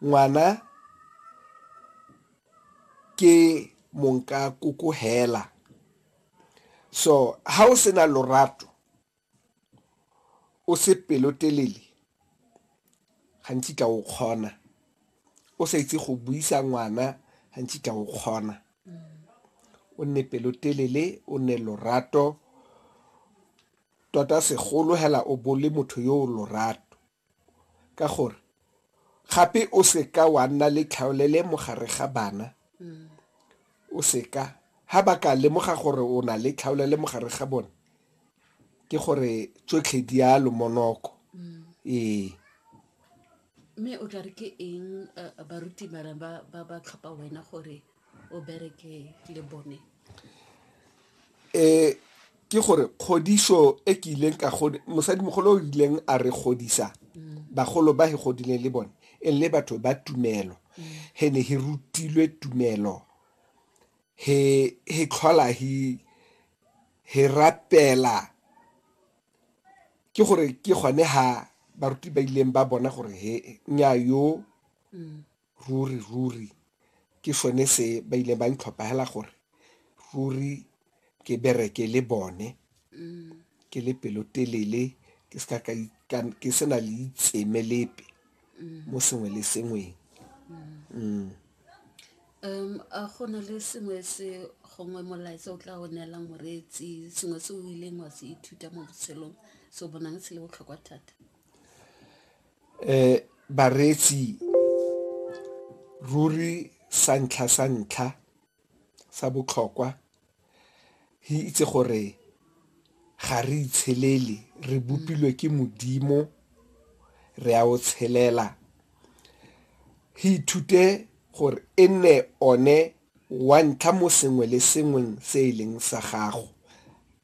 Ngwana ke monkakoko fela, so ha o sena lorato, o se pelotelele, ga nkitla o kgona. O sa itse go buisa ngwana, ga nkitla o kgona. O nne pelotelele, o nne lorato, tota segolo fela o bo o le motho yo o lorato. ka gore gape o seka wa nna le tlhaolele mo gare ga bana o seka ha ba ka lemoga gore o na le tlhaolele mo gare ga bone ke gore tsotlhe di a lomonoko ee mme o tla re ke eng eh, baruti bana ba ba ba tlhopha wena gore o bereke le bone um ke gore kgodiso e ke ileng ka mosadimogolo o ileng a re godisa mm. bagolo ba he godileng le bone e le batho ba tumelo mm. he ne he rutilwe tumelo he he tlhola he he rapela ke gore ke gone ha baruti ba ileng ba bona gore he nya yo mm. ruri, ruri ke sone se ba ile ba ntlhopha hela gore ruri ke bereke le bone ke le pelotelele ke seka ka ke sena le itseme lepe mo sengwe le sengweng mm. um a go na le sengwe se gongwe molaetsa o tla o neelang moreetsi sengwe se o ileng wa se ithuta mo botshelong se o bonang se le botlhokwa thata Um bareetsi ruri sa ntlha sa ntlha sa botlhokwa re itse gore ga re itshelele, re bopilwe ke Modimo re a o tshelela. Re ithute gore e nne one wa ntlha mo sengwe le sengweng se e leng sa gago.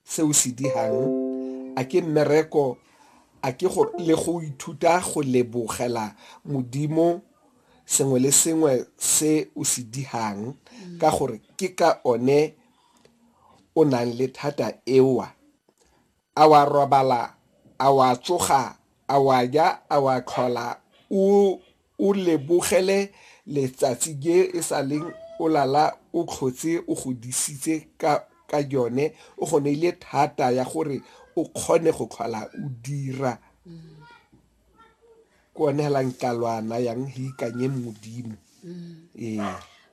se o se dihang a ke mmereko a ke go le go ithuta go lebogela modimo sengwe le sengwe se o se dihang mm. ka gore ke ka one o nang le thata ewa a wa robala a wa tsoga a wa ja a wa tlhola o O lebogele letsatsi je e sa leng o lala o tlhotse o go disitse ka ka jone, o go neile thata ya gore o kgone go tlhola o dira. Ke one hela nka lo a nayang he ikanye Modimo. Ee.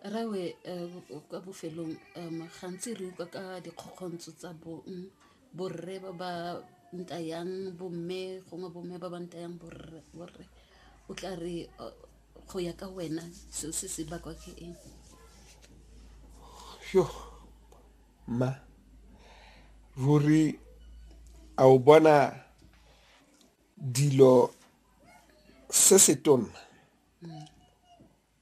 Rawe eh, kwa bofelong um gantsi re utlwa ka dikgokgontsho tsa bong Borre ba ba ntayang bomme gongwe bomme ba ba ntayang borre o tla re go ya ka wena seo se se bakwa ke eng? Mma ruri a o bona dilo se se tona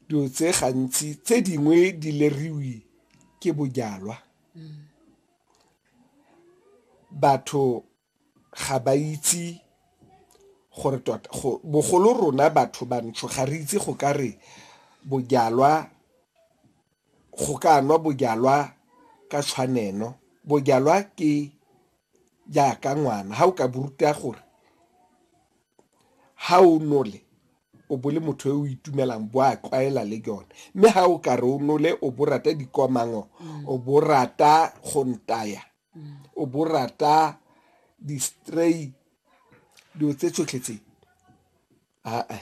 Dilo tse gantsi tse dingwe di leriwi ke bojalwa. Batho ga ba itse gore tota bogolo rona batho bantsho ga re itse go ka re bojalwa, go ka nwa bojalwa ka tshwanelo. Bojalwa ke jaaka ngwana, ga o ka bo ruta gore ga o nole o bo le motho yo o itumelang bo a tlwaela le yone mme ga o ka re o nole o bo rata dikomango o bo rata go ntaya o bo rata di-stray dilo tse tsotlhe tse aa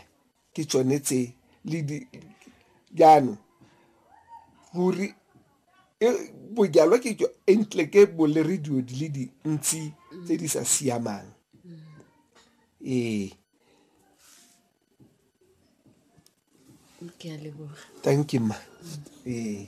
ke tsone tse le di jaanong ruri bojalwa ke jo entle ke bo le re dilo di le dintsi tse di sa siamang ee thank you ma ee